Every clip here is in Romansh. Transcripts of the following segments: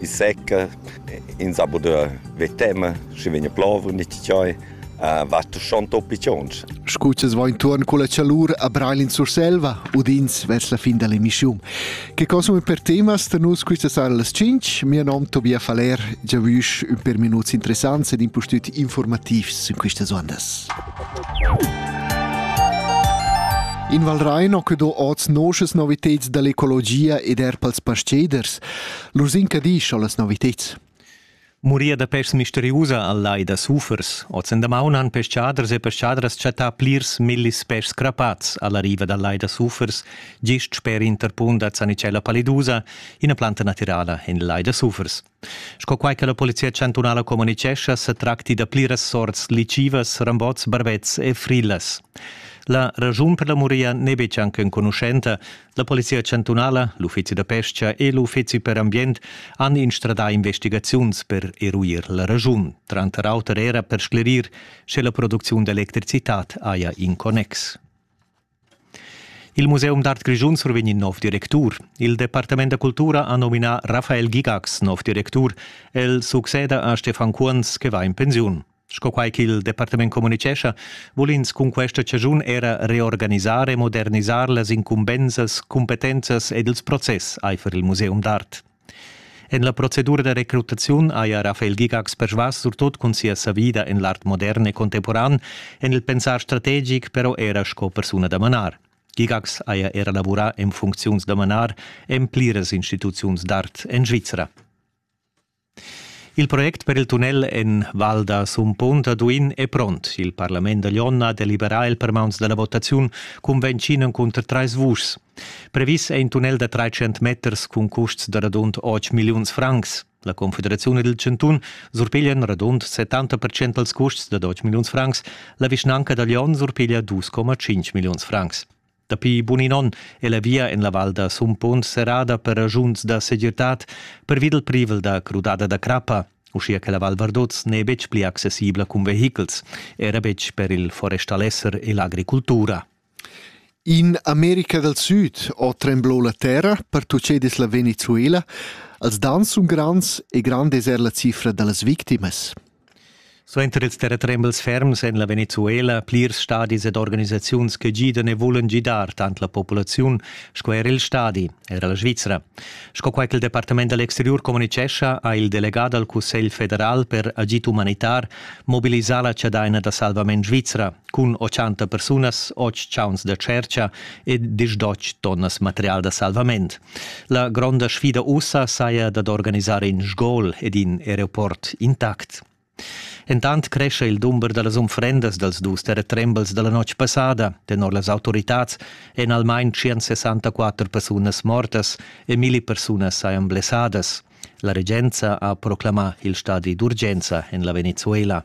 i secca, ins ha pudü ver tema, schi vegna plova, nicht tschai, va schon toppi tschonsch. Scu ch'es va intuorn culla chalur a Breil in Surselva, udins vers la fin da l'emissiun. Che consuma per temas da nus quista sara las 5? Mia nom Tobias Faller, giavüsch ün per minuts interessants ed impustüt informativs in quistas ondas. In Val Rein ho que do oz noschas novitads da l'ecologia ed er pels pasteders. Lur zincadisch o las noviteds? Murir da pes misteriusa al lai da sufers. Ozzendamaun han peschaders e peschadras chattà plirs millis pes crapats alla riva dal lai da sufers, gist sper Interpun da Zanicella palidusa, ina planta natirala en il lai da sufers. Sco quai che la polizia chantunala communitgescha, sa tracti da pliras sorts licivas, rambots, barbets e frillas. La ragiun per la muria n'è betg anc enconuschenta, La Polizia chantunala, l'uffizi da pestga e l'uffizi per ambient han instradà investigaziuns per eruir la raschun, tranter auter era per sclerir, sche la producziun d'electricitad haja in connex. Il Museum d'art Grischun survegn in nov directur. Il Departament da cultura ha nominà Rafael Gigax nov directur. El succeda a Stefan Kuans che va in pensiun. Sco quai ch'il departament communitgescha, vul ins cun questa chaschun era reorganisar e modernisar las incumbensas, cumpetenzas ed ils process aifer il museum d'art. En la procedura da recrutaziun haja Rafael Gigax persvas surtut cun sia savida en l'art modern e contemporan, en il pensar strategic però era sco persuna da manar. Gigax haja era lavurà en funcziuns da manar en pliras instituziuns d'art en Svizra. Il project per il tunnel en Val da Sumpont a Duin è pront. Il parlament da Lyon ha deliberà el per mauns da la votaziun cunvenschin encunter trais vuschs. Previs è in tunnel da 300 meters cun custs da radund 8 milliuns francs. La Confederaziun ed il Chantun surpiglian radund 70% dals custs da 8 milliuns francs, la vischnanca da Lyon surpiglia 2,5 milliuns francs. Dapi bun in onn è la via en la val da Sumpon serrada per ragiuns da segirtad pervi dal privel da crudada da crappa. Uschia che la Val Vardoz n'è betg pli accessibla cun vehichels, era betg per il forestalesser e l'agricultura. In America dal Süd ho tremblò la terra per tuccedis la Venezuela. Els dan sun grands e grande es er la cifra da las victimas. Suenter ils terratrembels ferms en la Venezuela plirs stadis ed organisaziuns che gidan e vulan gidar tant la populaziun sco er il stadi, era la Svizra. Sco quai ch'il Departament da l'exteriur communitgescha, ha il delegà dal Cussegl federal per agid umanitar mobilisà la chadaina da salvament svizra cun 80 persunas, 8 chauns da tschertga e 10 tonnas material da salvament. La gronda sfida ussa saja dad organisar in sgol ed in aeroport intact. Entant crescha il dumber da las unfrendas dals dus terretrembels da la notg passada. Tenor las autoritads èn almain 164 persunas mortas e milli persunas sajan blessadas. La regenza ha proclamà il stadi d'urgenza en la Venezuela.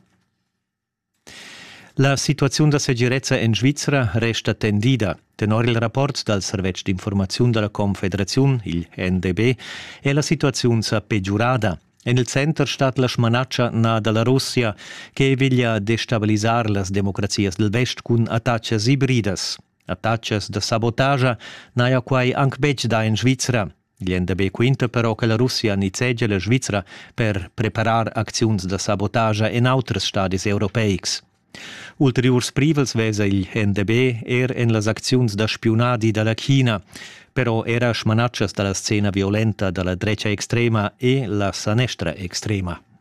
La situaziun da segirezza en Svizra resta tendida. Tenor il rapport dal servetsch d'informaziun da la Confederaziun, il NDB, è la situaziun sa pegiurada. En il center stat la smanatscha na da la Russia che veglia destabilisar las democrazias del vest cun attacas ibridas. Attacas da sabotagia n'haja quai anc betg dà en Svizra. Glienda be quinta però che la Russia nizzegia la Svizra per preparar acziuns da sabotagia en auters stadis europeics. Ulteriurs privels vesa il NDB er en las acziuns da spiunadi da la China, però era smanatschas da la scena violenta da la drecha extrema e la sanestra extrema.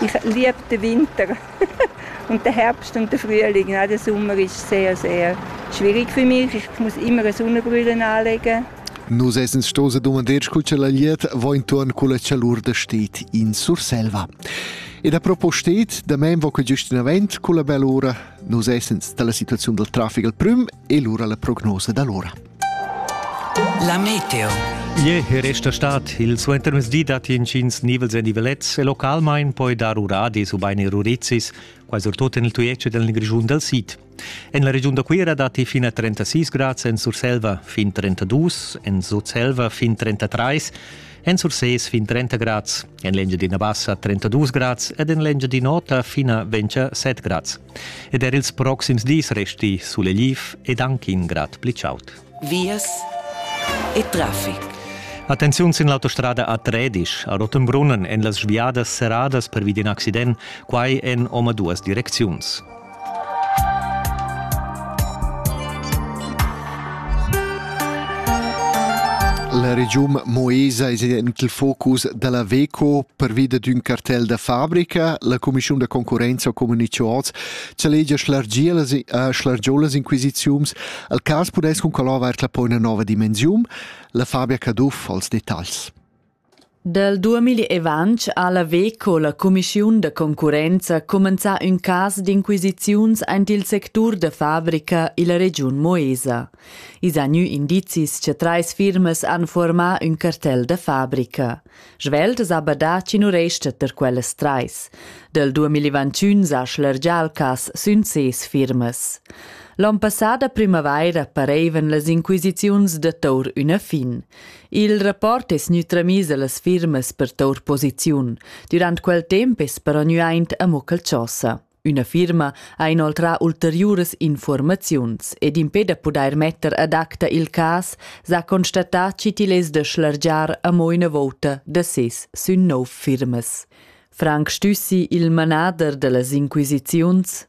Ich liebe den Winter und der Herbst und der Frühling. Der Sommer ist sehr, sehr schwierig für mich. Ich muss immer eine Sonnenbrille anlegen. Nus essens stos dumandeir cu la liet vo intorn cu la chalur da stet in Surselva. Ed a propostet, da men vo que giust in avent cu la bell'ora, nus essens dalla situazione del traffico al prim e l'ora la prognosa dall'ora. La meteo. Ie resta stat il suentermesdi datti intgins nivels e nivelets e localmain poi dar uradis ubain erurizis, quai surtut en il Tujetsch del Grischun dal Sid. En la regiun da Cuira datti fin a 36 grads en Surselva, fin 32, en Sutselva fin 33, En Sursés fin 30 grads, en l'Engiadina Bassa 32 grads ed en l'Engiadin'Ota fin a 27 grads. Ed er ils proxims dis resti sulegliv ed anche in grad pli chaud. Vias e traffic. Attenziun sin l'autostrada A13 a Rottenbrunnen en las sviadas serradas pervi d'in accident, quai en omaduas direcziuns. La regiun Moesa es en il focus da la VECO pervida d'ün cartel da fabrica. La cumischiun da concurrenza comunicho oz cha legia schlargiolas inquisiziuns. Al cas pudess cun collavar la poi üna nova dimensiun. La Fabia Caduff als detagls. Dal duamilli e ventg ha la Veco, la cumischiun da concurrenza, cumenzà ün cas d'inquisiziuns aint il sectur da fabrica illa regiun Moesa. I s'ha gnü indizis cha trais firmas han fuormà ün cartel da fabrica. Svelt s'ha badà chi nu resta ter quellas trais. Dal duamilli ventün s'ha schlargià il cas sün ses firmas. L'on passà da primavaira parevan las inquisiziuns da tour üna fin. Il rapport es gnü tramiss a las firmas per tour posiziun. Dürant quel temp es però gnü aint amo Calciossa. Üna firma ha inoltrà ulteriuras informaziuns ed impè da pudair metter ad acta il cas s'ha constatà chi til es da schlargiar amo üna vouta da ses sün nov firmas. Frank Stüssi, il manader da las inquisiziuns,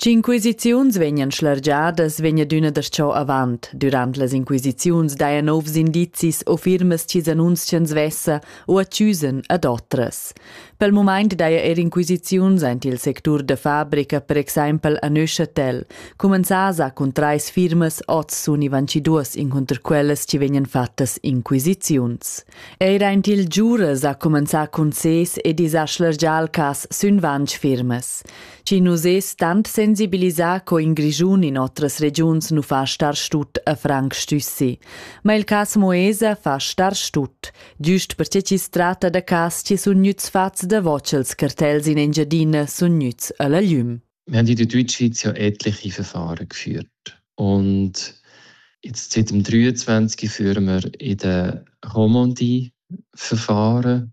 Tsch'inquisiziuns vegnan schlargiadas vegn adüna darcheu avant. Dürant las inquisiziuns daja nouvs indizis o firmas chi's annunzian svessa o accüsan ad otras. Pel mumaint daja eir inquisiziuns aint il sectur da fabrica, per exaimpel a Neuchâtel. Cumanzas ha cun trais firmas oz sun ivanci duos incunter quellas chi vegnan fattas inquisiziuns. Eir aint il Giures ha cumanzà cun ses ed is ha schlargià il cas sün vanch firmas. Chi nu sez tant sensibilisà co in Grischun in otras regiuns nu fa star stut a Frank Stüssi. Ma il cas Moesa fa star stut, giust perche chi's tratta da cas chi sun gnüts fats davo cha'ls cartels in Engiadina sun gnüts a la gliüm. Wir haben in der Deutschschweiz ja etliche Verfahren geführt. Und jetzt seit dem 23 führen wir in den Romandie-Verfahren.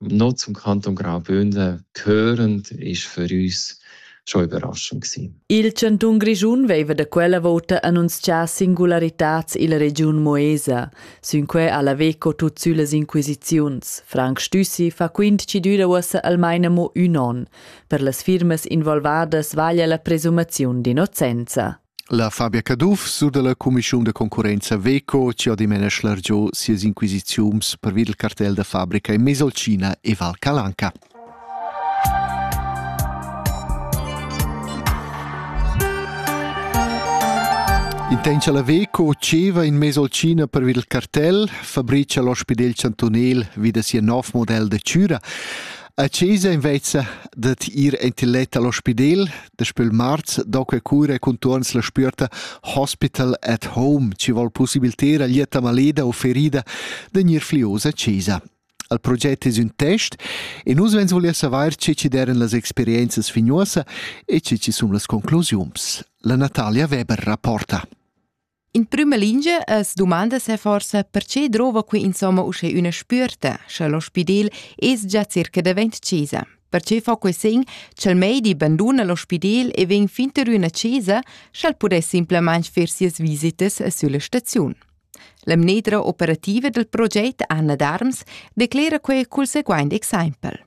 noch zum Kanton Graubünden gehörend ist für uns schon überraschend gewesen. Il chantun Grischun veva da quella vota annunzià singularitats illa regiun Moesa. Sinquei ha la Veco tut sülas inquisiziuns. Frank Stüssi fa quint ci düra uossa almain amo ün on. Per las firmas involvadas vaglia la presumaziun d'innocenza. La Fabia Caduff sur dalla cumischun da concurrenza Veco chi ha dimena schlargiò sias inquisiziuns pervi dal cartel da fabrica in Mesolcina e Val Calanca. Intencha la Veco ceva in Mesolcina per vid il cartel, fabrica l'ospidel chantunel vi da sia nov model de Cura. A Cesa invezza dat ir entiletta all'ospidel, Daspö il marz do que cura contuorns la spüerta Hospital at Home chi vol pussibiliter a lieta maleda u ferida da gnir fliosa a chesa. Al proget es ün test e nus vegns voler savair che chi deren las experienzas fignuosa e che chi sun las conclusiuns. La Natalia Weber rapporta. In prüma lingia as dumanda se forsa perche drova qui insomma uschè üna spüerta, scha l'ospidel es già circa davent chesa. Perche fa que sen ch'el meidi banduna l'ospidel e vegn finter üna chesa, sch'el pudess simplemente fer sias visitas sülla staziun. La mneddra operativa del proget Anna Darms declera que cul seguaint exaimpel.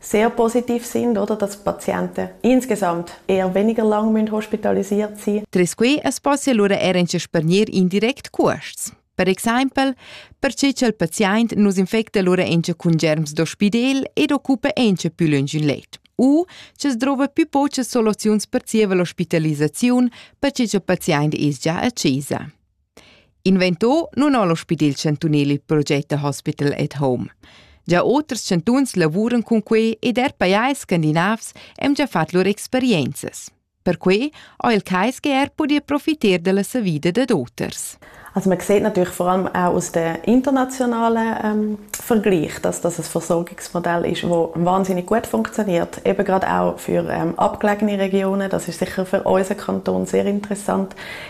sehr positiv sind, oder dass Patienten insgesamt eher weniger lang müssen hospitalisiert sein müssen. Tras quei es possi allura er en spernir indirect cuosts. Per exempel, perche cha'l paziaint nus infecta lura encha cun germs d'ospidel ed occupa encha pü lönch ün let. U ch'es drova pü pochas soluziuns per zieva l'ospitalisaziun, perche cha paziaint es già a chesa. Invento nun ho l'ospidel chantunel il proget da Hospital at Home. Già oters chantuns lavuran cun quei ed er pajais scandinavs hem già fat lur experienzas. Perquei ho il KSGR pudi profiter della savida dad oters. Also man sieht natürlich vor allem auch aus der internationalen ähm, Vergleich, dass das ein Versorgungsmodell ist, wo wahnsinnig gut funktioniert, eben gerade auch für ähm, abgelegene Regionen. Das ist sicher für unseren Kanton sehr interessant.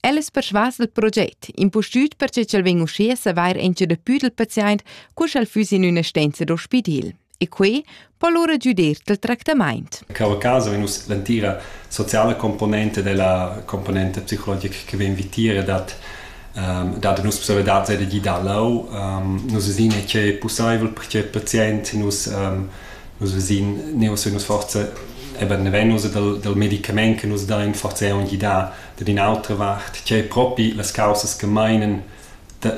El es persvas dal proget, impustüt perche ch'el vegn uschè a savair encha dapü dal paziaint co sch'el füss in üna stenza d'ospidil. E quai po lura giudir dal tractamaint. Cavacasa vegn uss l'entira sociala componente della componente psicologica che vegn vitire dat um, dat nus possibilitad da gidar lau um, nus vesin è che possibel perché patient nus um, nus vesin ne us nus forza eben venus dal, dal medicament che nus da in forza un gida Dad in'autra vart, tgei propi las caussas che meinen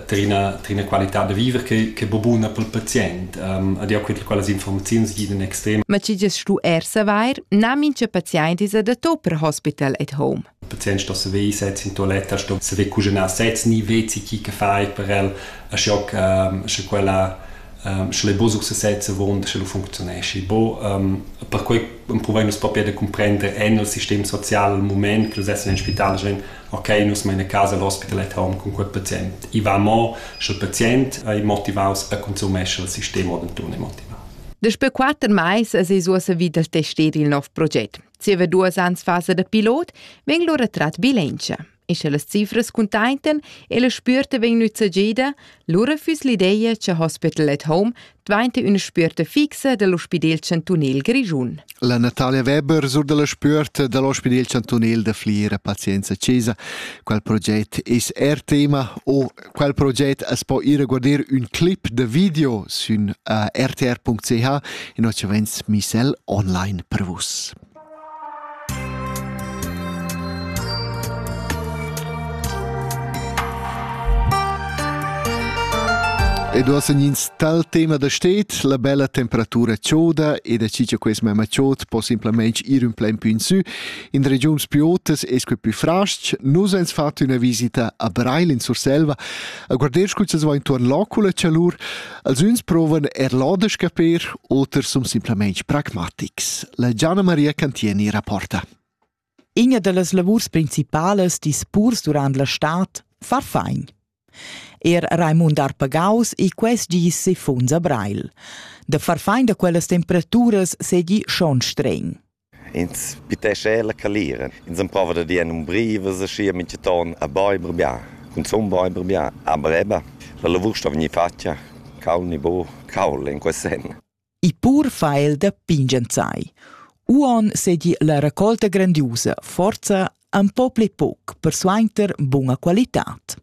tar ina, tar ina qualitad da viver che, che bo buna per il pazient. Um, ed jau quint, quelle informazioni giden extrem. Ma tgi gest stu er savair, na mintga pazient è adatto per hospital at home. Il patient sto saver sez in toiletta, sto saver cuginar sez, ni vezi chi che fai per el, sche, um, sche quella um, sche le bo sur sez avon, sche lo funzionesci. Bo, um, per quei empruvain nus propi da cumprender en il sistem social al mument che nus essan in spital, schain, ok, nus main a casa l'ospital at home cun quel pazient. I va mo, sche il pazient è motivaus a consumescer il sistem o denton è motivaus. Daspö quatter mais es es uossa vi dal tester il nov proget. Zieva duos ans fasa da pilot vegn lura trat bilantscha. E sche las cifras cuntaintan e la spürta vegn nüzzageda, lura füss l'ideja cha Hospital at Home dvainta üna spürta fixa da l'ospidel chantunel grischun. La Natalia Weber sur dalla spürt dall'ospidel chantunel da Fliera Pazienza Cesa. Quel proget es er tema o quel proget as po ir a guarder ün clip da video sün uh, rtr.ch e no ci vens misel online per vus. Ed ossa ins tal tema da stet, la bella temperatura choda e da chi cha quest memma chod po simplamaing ir ün plain pü in sü. In regiuns più otas es que pü fras-ch. Nus ans fat üna visita a Breil in Surselva a guarder scu cha va intuorn l'ocula chalur. Els üns provan eir lò da scaper, oters sun simplamaing pragmatics. La Gianna Maria Cantieni rapporta. Inia da las lavurs principalas dis purs durant la stad fa fain. Er Raimund Arpagaus e quest gis se funza Breil. Da far fain da quellas temperaturas segi schon streng. Ins pitescha er la calira. Ins emprova da dir en umbrivas aschia mintgaton a beiber bia, cunzun beiber bia. Aber eben, la lavur sto vegnir fatga cauld ni buc cauld in quei senn. Il pur fa el da pingenzai. Uon sedi la raccolta grandiusa forza empau pli pauc per suenter bunga qualitad.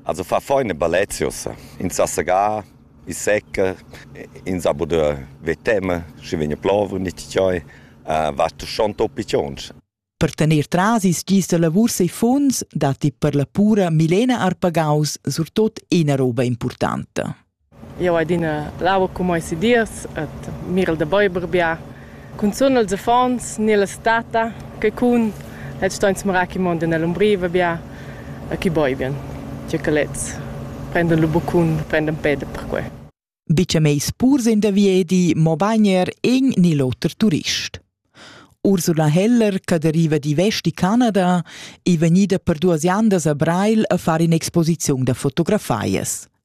As ho fat fo ün ballet sü ussa. In s'ha segà, i seca, ins ha pudü ver tema, schi vegna plov u nicht cheu. Vatta schon toppi chonsch. Per tener tras ils gis da lavurs e funds datti per la pura Milena Arpagaus surtot ina roba impurtanta. Jau hai adina l'aua cun mais e dirs ed mirel da beiber bia. Cunzun els affons ni las tata, che cun els ston smarar ch'i mondan ell'umbriva bia e ch'i beivan. Tge che lezs prendan lu buccun, prendan peda per quei. Bitg meis purs in da viedi, mobain er in ni l'oter turist. Ursula Heller, che deriva d'Ivesti, Canada, è vegnida per duas andas a Breil a far in'exposiziun da fotografias.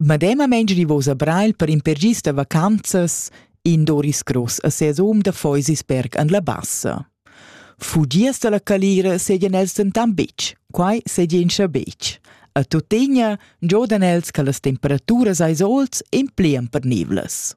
Medemamein gnivosa Breil per in per gis da vacanzas in Doris Gross a ses hom da Feusisberg an la Bassa. Fugias dalla calira seigien els denton betg, quai seigien scha betg. A tuttegna giodan els che las temperaturas eis oz in plian pernivlas.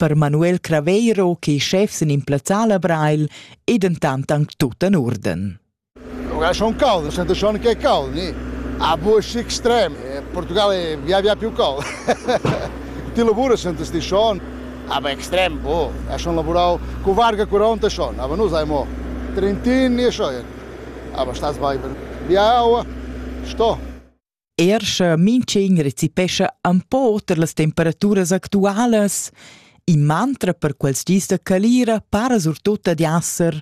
Per Manuel Craveiro che schef sin in plazzal a Breil ei dentant anc tut en urden. Ora schon caldo, sento schon che è caldo. Ni. A bush extrem. In Portugal è via via più caldo. Ti lavora sento sti schon. Aber extrem, boh. Ha schon lavorat con varga 40 schon, aber nu sei mo 30 e schon. Aber stas bene. Via aua, sto. Er sche mintgin recepescha un po oter las temperaturas actualas, in mantra per quels gis da calira para surtut ad esser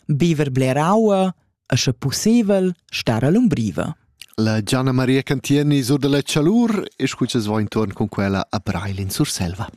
biver bler aua e sche pussebel star a l'umbriva. La Gianna Maria Cantieni sur da la chalur e scuccias va intorn con quella a Brail in Surselva.